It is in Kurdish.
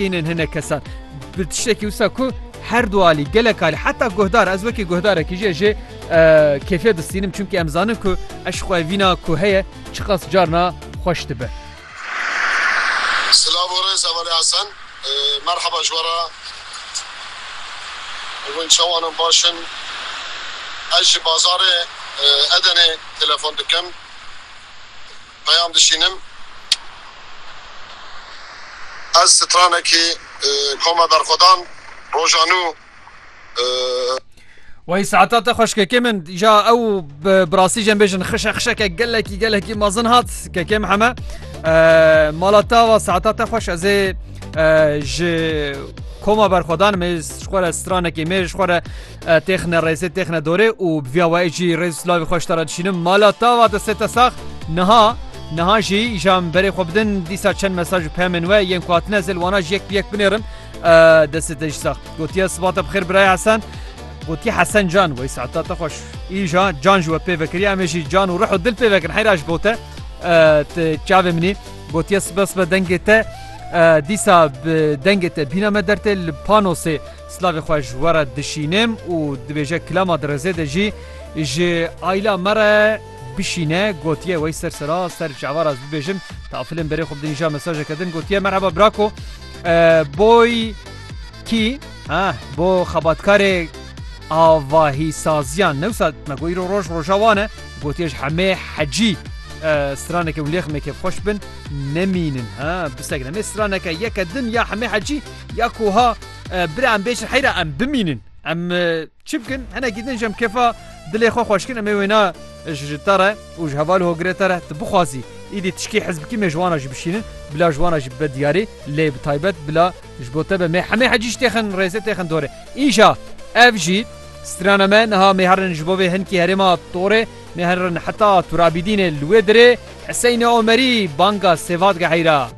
Hînên hinek kesan bi tiştekî wisa ku her du alî gelek alî heta guhdar ez wekî guhdarekî jê jê kêfiye distînim çimkî em zanin ku eşqwe vîna ku heye çiqas carna xweş dibe. Silav û rêz Emelê Hesen. Merheba ji we re. Hûn çawan in baş in? Ez ji bazarê Edenê telefon dikim. Peyam dişînim. Ez stranekî koma berxwedan roja nû. Wey saeta te xweş kekê min ja ew bi rastî jê bêjin xişe xişeke gelekî gelekî mezin hat kekê min heme mala te va saeta te xweş ez ê ji koma berxwedan me ji xwe re stranekê me ji xwe re Têxine rêzê têxine dorê û bi vîya wayê jî rêz û silavê xwe ji te re dişînim mala te va destê te sax niha niha jî ja min berê xwe bidin dîsa çend mesaj û peyamên we yên ku hatine zêl wana jî yek bi yek binêrin destê te jî sax gotiye siba te bi xêr birayê Hesen gotiye Hesen can wey saeta te xweş îja can ji we pê vekiriye em ê jî can û rih û dil pê vekin heyra ji bo te ti çavê min î gotiye sibe sibe dengê te dîsa bi dengê te bîna me dertê li panosê Silavê xwe ji we re dişînim û dibêje kilama di rizê de jî ji ayla me re bişîne gotiye wey ser sera ser çavar ez bibêjim tafilên berê xwe bidinîja mesajeke din gotiye merheba brako boy kî ha bo xebatkarê avahî saziyan newsa me goî ro roj roja wane gotiye ji hemê hecî straneke û lêxmekê xweş bin nemînin ha bisegneme straneke yeke din ya hemê hecî ya koha Bira em bêjin heyra em bimînin em çi bikin henekî din ji em kefa dilê xwe xweşkin em ê wêna ji te re û ji heval hogirê te re tu bixwazî îdî tişkî hizbikî mê ji wana jî bişînin bila ji wana jî bibe diyarî lê bi taybet bila ji bo te be mê hemê hecî ji têxin rêzê têxin dorê îja ev jî strana me niha mê herin ji bo vê hinkî herêma torê mê herin heta turabîdînê li wê dirê Heseyne Omerî banga sêvatge heyra.